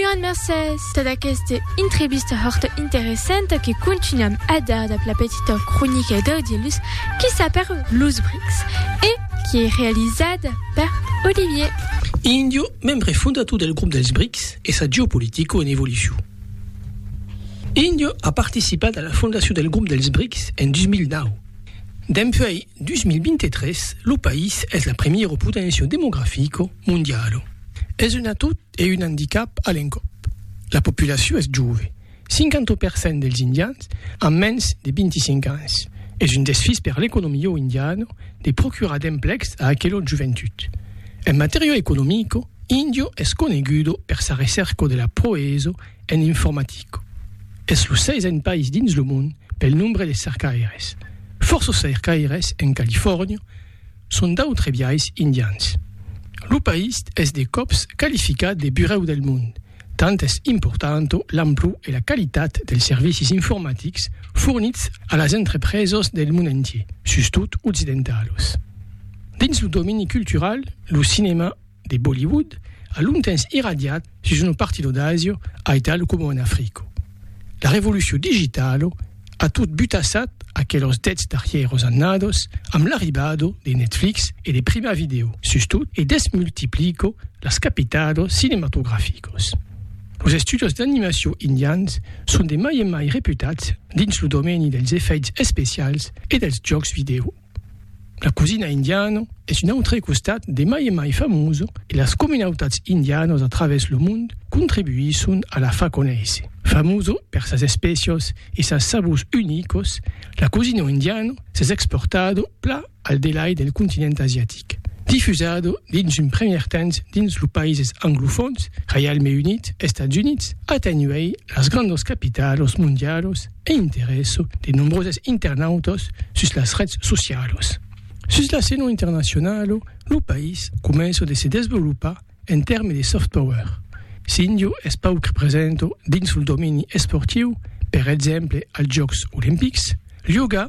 Uan mercés tad aqueste intrevista hòrta interessanta que contunham a dar dab la petita cronica d'Audielus qui sa per Los Brics e qui ei realizada per Olivier. Indio, membre fondator del grop dels Brics e sa geopolitica en evolucion. Índia a participat a la fondacion del Grop dels Brics en 2009. Dempuèi 2023, lo país es la primièra poténcia demografica mondiala. Es un atout e un andicap a l'encòp. La populacion es jove, 50 per cent dels indians an mens de 25 ans. Es un desfís per l'economia indiana de procurar d'emplecs a aquela joventut. En matèria economica, Indio es conegudo per sa recèrca de la proeso en informatica. Es lo seisen país dins lo mond pel nombre de cercaires. Fòrça cercaires en Califòrnia son d'autres biais indians. Lo país es de còps qualificat de burèu del mond Tant es importanta l'amplor e la qualitat dels servicis informatics fornits a las entrepresas del mond entier, sustot occidentalos. Dins lo domeni cultural, lo cinèma de Bollywood a longtemps irradiat sus una partida d'Asia, aital coma en Africa. La revolucion digitalo a tot butassat aquelos dets darrièros annados amb l'arribado de Netflix e de Prima Video, sustot e desmultiplico las capitados cinematograficos. Los estudios d'animacion indians son de mai en mai reputats dins lo domeni dels efèits especials e dels jòcs vidèo. La cosina indiana es un autre costat de mai en mai famós e las comunautats indianas a travèrs lo mond contribuisson a la far conéisser. Famosa per sas espècias e sas sabors unicas, la cosina indiana s'es exportada pla al delai del continent asiatic. Difusada dins un premier temps dins los païses anglofòns, Reialme Unit, Estats Units, atenhuèi las grandas capitalas mondialas, e interèsso de nombroses internautas sus las rets socialas. Sus l'escena internacionala, lo país comença de se desvolopar en tèrmes de soft power. S'Indio es pauc presenta dins lo domeni esportiu, per exemple als Jòcs Olimpics, Lyoga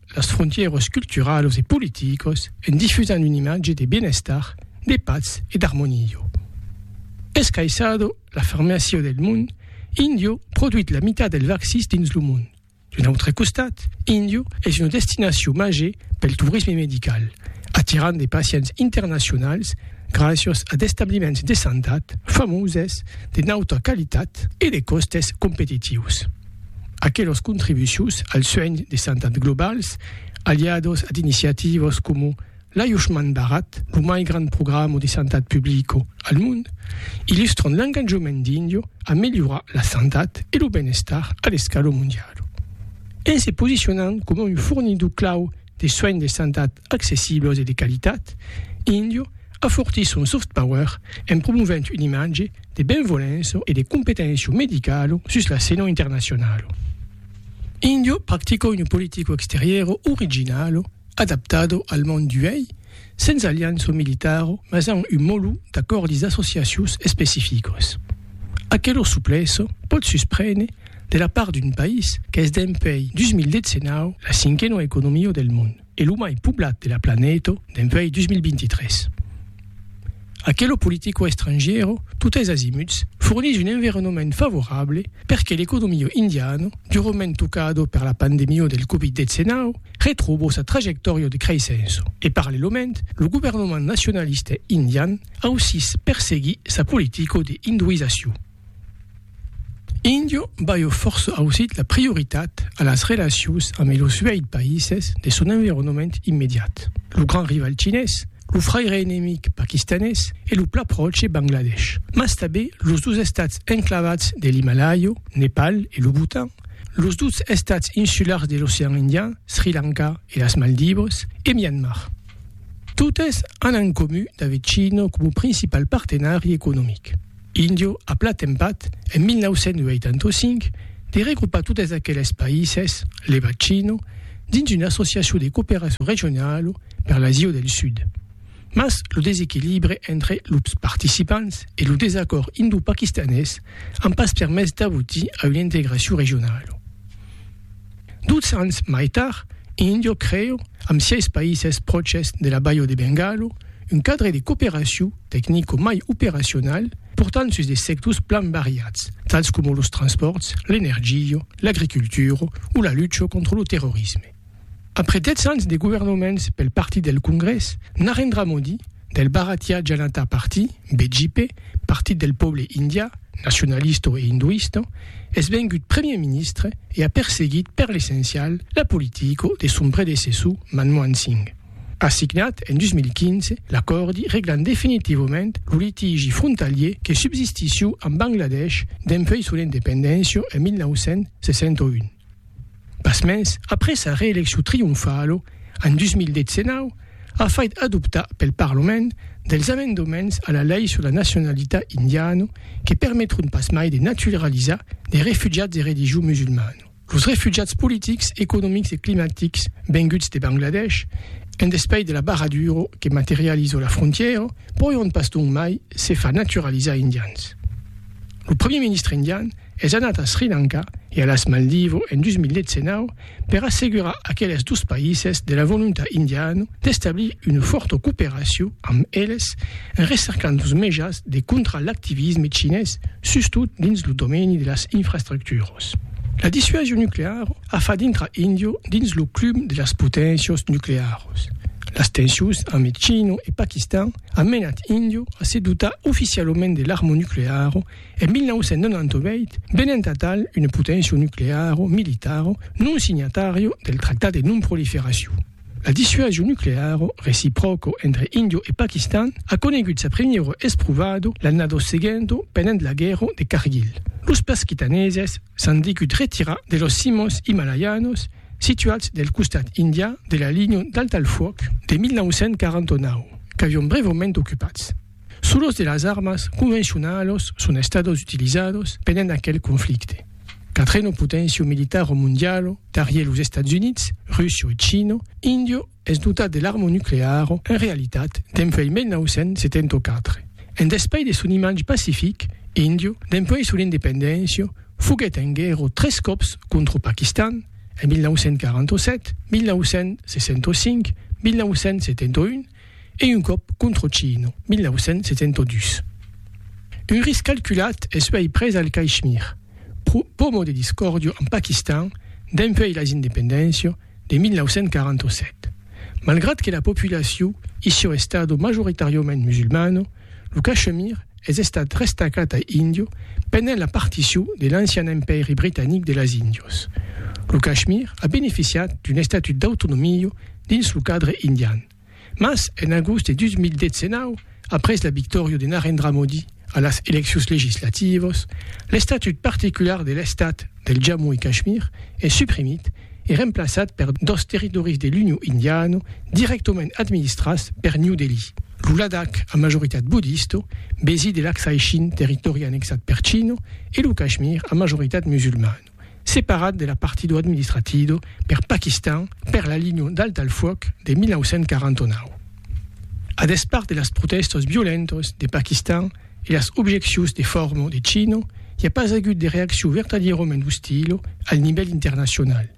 las frontièras culturalas e politicas en difusant una imatge de bienestar, de patz e d'armonia. Escaissado la farmàcia del mond, Indio produit la mitat dels vaccins dins lo mond. D'un autre costat, Indio es una destinacion màger pel torisme medical, atirant de pacients internacionals gràcias a d'establiments de santat famoses, de nauta qualitat e de còstes competitius. Aquelos contribucius al suenh de santat globals, aliados ad iniciativos como l'ajustment barat, lo mai grand programa de santat publico al mond, illustran l'enganjament d'Indio a melhorar la santat e lo benestar a l'escala mondiala. En se posicionant coma un fornidor clau de suenh de santat accessibles e de qualitat, Indio afortís son soft power en promovent un imatge de benvolença e de competéncia medicala sus la scèna internacionala. Indio practica una politica exteriora originala adaptada al mond d'uèi, sens aliança militara mas amb un molhu d'acòrdis d'associacions especificas. Aquela suplesa pòt susprene de la part d'un país qu'es dempèi 2019 la cinquena economia del mond. e lo mai poblat de la planeta d'envei 2023. Aquelo politico estrangiero, totes azimuts, fornís un environament favorable perque l'economio indiano, durament tocado per la pandemio del Covid-19, retrobo sa trajectòria de creissença. E parallelament, lo governament nacionalista indian ausís perseguís sa politico de hinduizacion. Indio balhò fòrça ausit la prioritat a las relacions ambe los uèit païses de son environament immediat, lo grand rival chinés, lo fraire enemic paquistanés e lo plat pròche Bangladesh, mas tanben los dos estats enclavats de l'Himalàia, Nepal e lo Bhutan, los dos estats insulars de l'Ocean Indian, Sri Lanka e las Maldivas, e Myanmar. Totes an en comun d'aver China coma principal partenari economic. Indio a plat empat, en 1985, de regrupar totes aqueles païses, le bacino, dins una associacion de cooperacion regionala per l'Asia del Sud. Mas lo desequilibre entre los participants e lo desacòrd indo-paquistanés an pas permés d'abotir a una integracion regionala. Duts ans mai tard, Indio creu, amb sièis païses pròches de la Baio de Bengalo, un cadre de cooperacion tecnico mai operacional portant sus de sectors plan variats, tals coma los transpòrts, l'energia, l'agricultura o la lucha contra lo terrorisme. Après 10 ans de governaments pel Partit del Congrès, Narendra Modi, del Bharatiya Janata Party, BJP, Partit del Pòble Indià, nacionalista e induista, es vengut Premier Ministre e a perseguit per l'essencial la politica de son predecessor Manmohan Singh. A signat en 2015 l'acòrdi reglant definitivament lo litigi frontalier que subsistissió amb Bangladesh dempuèi son independéncia en 1961. Pasmens, après sa reeleccion trionfalo en 2019, a fait adoptar pel Parlament dels amendements a la lei sur la nacionalitat indiana que permetrun pasmai de naturalizar de refugiats de religion musulmana. Los refugiats politics, economics e climatics venguts de Bangladesh, en despais de la barradura que materializa la frontièra, pòion pas donc mai se far naturalizar indians. Lo Premier Ministre indian es anat a Sri Lanka e a las Maldivo en 2019 per assegurar aqueles dos païses de la volontat indiana d'establir una fòrta cooperacion amb eles en recercant los mejans de contrar l'activisme chinés sustot dins lo domeni de las infrastructuras. La dissuasion nucleara a fach dintrar India dins lo club de las poténcias nuclearas. Las tensions amb China e Paquistan an menat India a se dotar oficialament de l'arma nucleara En 1998, venent atal una poténcia nucleara o militara non signatària del Tractat de Non-Proliferacion, la dissuasion nucleara recipròca entre Índia e Paquistan a conegut sa primièra esprovada l'annada seguenta pendent la guèrra de Kargil. Los paquitaneses s'an degut retirar de las cimas imalaianas situats del costat indià de la linha d'alta-al-fuòc de 1949, qu'avián brèvament ocupats. Solos de las armas convencionalos son estados utilizados pendent aquel conflicte. Quatreno potencio militaro mondialo, darrier los Estats Units, Russia e China, Indio es dotat de l'arma nucleara en realitat dempuèi 1974. En despais de son imatge pacific, Indio, dempuèi son independéncia, foguèt en guèrra tres còps contra Paquistan, en 1947, 1965, 1971, e un còp contro Chino, 1972. Un risc calculat es uèi pres al Caishmir, pomo de discòrdio amb Paquistan dempuèi las independéncia de 1947. Malgrat que la populaciu issiò estado majoritàriament musulmana, Lo Cachemir es estat restacat a Indio pendent la particion de l'ancian empèri britanic de las Índios. Lo Cachemir a beneficiat d'un estatut d'autonomia dins lo cadre indian, mas en agost de 2019, après la victòria de Narendra Modi a las eleccions legislativas, l'estatut particular de l'estat del Jammu e Cachemir es suprimit e remplaçat per dos territòris de l'Union Indiana dirèctament administrats per New Delhi, lo Ladakh a majoritat bodista, besi de l'Aksai Chin, territòri annexat per China, e lo Kashmir a majoritat musulmana, separat de la partida administratida per Paquistan per la linha d'alt al fuòc de 1949. A despart de las protèstas violentas de Paquistan, e las objeccions de forma de Chino, i a pas agut de reaccion vertadièrament ostila al nivèl internacional,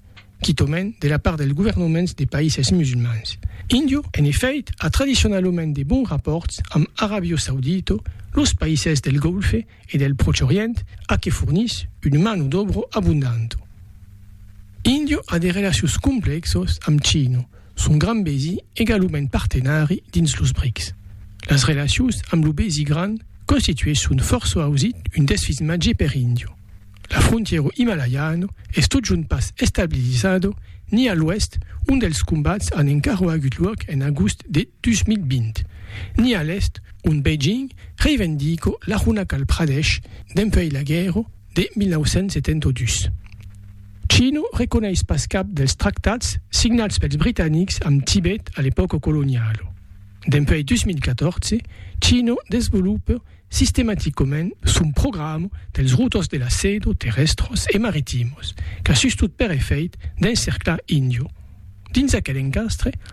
quitament de la part dels governaments de païses musulmans. Índia, en efèit, a tradicionalament de bons rapòrts amb Aràbia Saudita, los païses del Golfe e del Pròche Orient a que fornís una mano d'òbra abondanta. Índia a de relacions complèxas amb China, Son grand besi egalument partenari dins los brics. Las relacions amb lo besi grand constituesson fòrça ausit un desfismatge per Indio. La frontièro Himalayano es totjorn pas estabilizado ni a l'oèst ont dels combats an encara agut luòc en agost de 2020, ni a l'èst ont Beijing reivendico l'Arunachal Pradesh dempuèi la guèrra, de 1972. Chino reconeis pas cap dels tractats signats pels britanics amb Tibet a l'epòca coloniala. Dempuèi 2014, Chino desvolopa sistematicament son programa dels routors de la seda terrèstros e maritimos qu'a sustot per efèit d'encerclar Indio dins aquel encastre